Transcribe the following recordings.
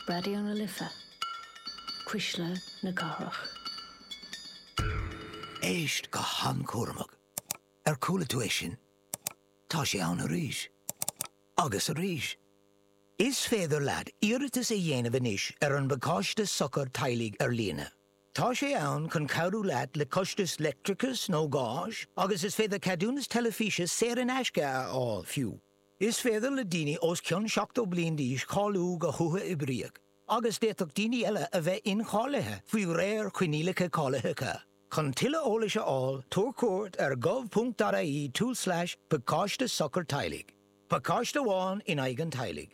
Raidió na Life, Cuisle na Cathrach. Éist go han-chúramach. Ar chuala tú é sin? Tá sé ann arís. Agus arís. Is féidir leat iarratas a dhéanamh anois ar an bPacáiste Sochair Teaghlaigh ar líne. Tá sé ann chun cabhrú leat le costais leictreachais nó gáis agus is féidir ceadúnas teilifíse saor in aisce a fháil fiú. Is féidir le daoine os cionn 70 bliain d'aois cáiliú go huathoibríoch agus d'fhéadfadh daoine eile a bheith incháilithe faoi réir coinníollacha cáilitheacha. Chun tuilleadh eolais a fháil, tabhair cuairt ar gov.ie/pacáiste sochair teaghlaigh, pacáiste amháin in aghaidh an teaghlaigh.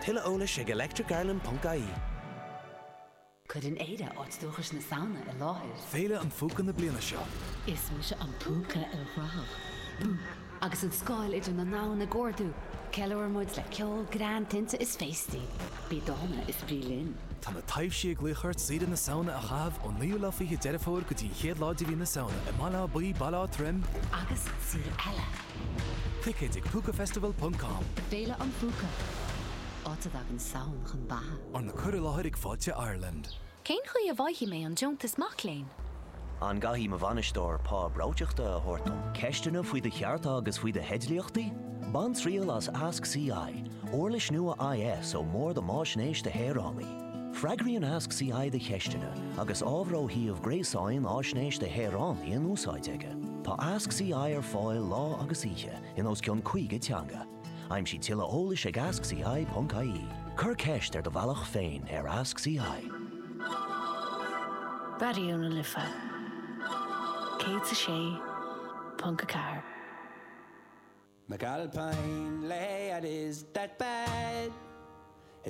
Tuilleadh eolais ag electricireland.ie. Cuireann Éire áit dúchais na Samhna i láthair. Féile an Phúca na bliana seo. Is mise an púca ilchruthach. Bú! Agus an scáil idir na ndomhan ag ardú, ceiliúrann muid le ceol, greann, tinte is féastaí. Bí dána is bí linn. Tá na taibhsí ag glaoch ort saoire na Samhna a chaitheamh ón naoú lá fichead Deireadh Fómhair go dtí an chéad lá de mhí na Samhna i mBaile Átha Buí, Baile Átha Troim, Agus saoire eile! Ticéid ag Púcafestival ponc com. Féile an Phúca, áit a dtagann Samhain chun beatha. Arna cur i láthair ag Fáilte Ireland. Cén chaoi a bhfaighidh mé an deontas mac léinn? An gcaithfidh mo bhainisteoir pá breoiteachta a thabhairt dom? Ceisteanna faoi do chearta agus faoi do theidlíochtaí? Bain triail as Ask CI, uirlis nua IS ón mBord um Fhaisnéis do Shaoránaigh. Freagraíonn Ask CI do cheisteanna agus ábhar ó shuíomh gréasáin Fhaisnéis do Shaoránaigh in úsáid aige. Tá Ask CI ar fáil lá agus oíche in os cionn 50 teanga. Aimsigh tuilleadh eolais ag askci.ie. Cuir ceist ar do bhealach féin ar Ask CI. Raidió na Life 106.4.